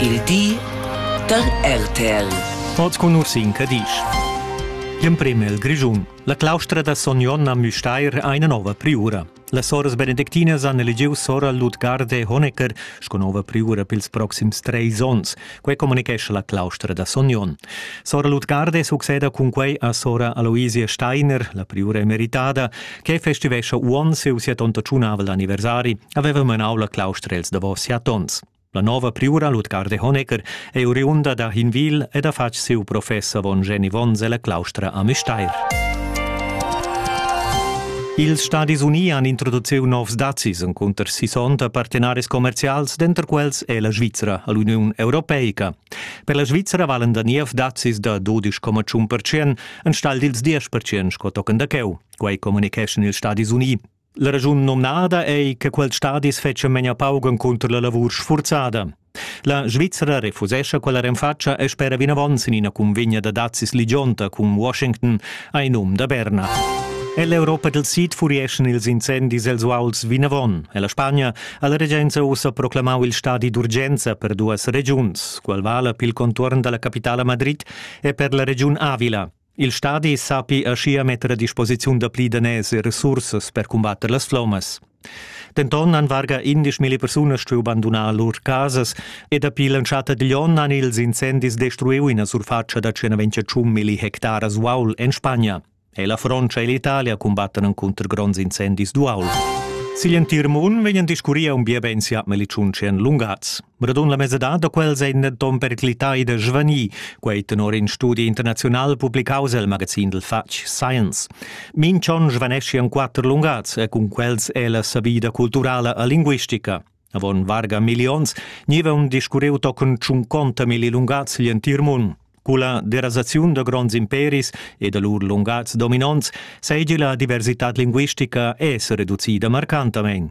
Il di da RTL. Oz con Ursin Cadisch. Gl'emprem el Grischun. La claustra da Son Jon a Müstair ha ina nova priura. La soras benedictina han eligiu sora Ludgarde Honecker sco nova priura pils proxims treis onns. Quei comunichescha la claustra da Son Jon. Sora Ludgarde succeda cun quei a sora Aloisia Steiner, la priura emeritada, che festivescha uonn siu sia tonta tschunavl anniversari. haveva menau la claustra els davos siat onns. La nova priura Ludgard de Honecker ei oriunda da Hinwil ed ha fatg siu professor von Jenny Wons ella claustra a Müstair. Ils Stadis Unii han introduciu novs dazis encunter sissonta partenaris commercials, denter quels è la Svizra all'Uniun Europeica. Per la Svizra valen da niev dazis da 12,1% enstagl dils 10% sco tochen da cheu. Quei communicheschan ils Stadis Unii. La raschun nomnada ei che quels stadis fetschan memia pauc encunter la lavur sfurzada. La Svizzera refusescha quella renfatscha e spera vinavon sin ina cunvegna da dazis ligionta cun Washington ai num da Berna. Ell'Europa del Sid furieschan ils incendis els uauls vinavon e la Spagna ha la regenza ussa proclamau il stadi d'urgenza per duas regiuns, qual vala pil contuorn dalla capitala Madrid e per la regiun Avila, Il stadi sappi aschia metter a disposiziun dapli daners e resursas per cumbatter las flommas. Denton han varga indesch milli persunas stuiu bandunar lur casas e dapi l'entschatta digl onn han ils incendis destruiu ina surfatscha da 121 milli hectaras uaul en Spagna. E la Frontscha e l'Italia cumbattan encunter gronds incendis d'uaul. Sigl entir mund vegnan discurria un bia bein siat melicun tschien lungaz. Radun la mesadad da quels ein denton periclitai da svanir, quei tenor in studi internazional publicaus el magazin dil fatg Science. Minchon svanesci en quatter lungats e cun quels è la savida culturala e linguistica. Avon varga millions niva un discurriu tochen tschunconta milli lungats gl'entir mund. Culla derasaziun da gronds imperis e da lur lungats dominonts seigi la diversitad linguistica es reducida marcantamein.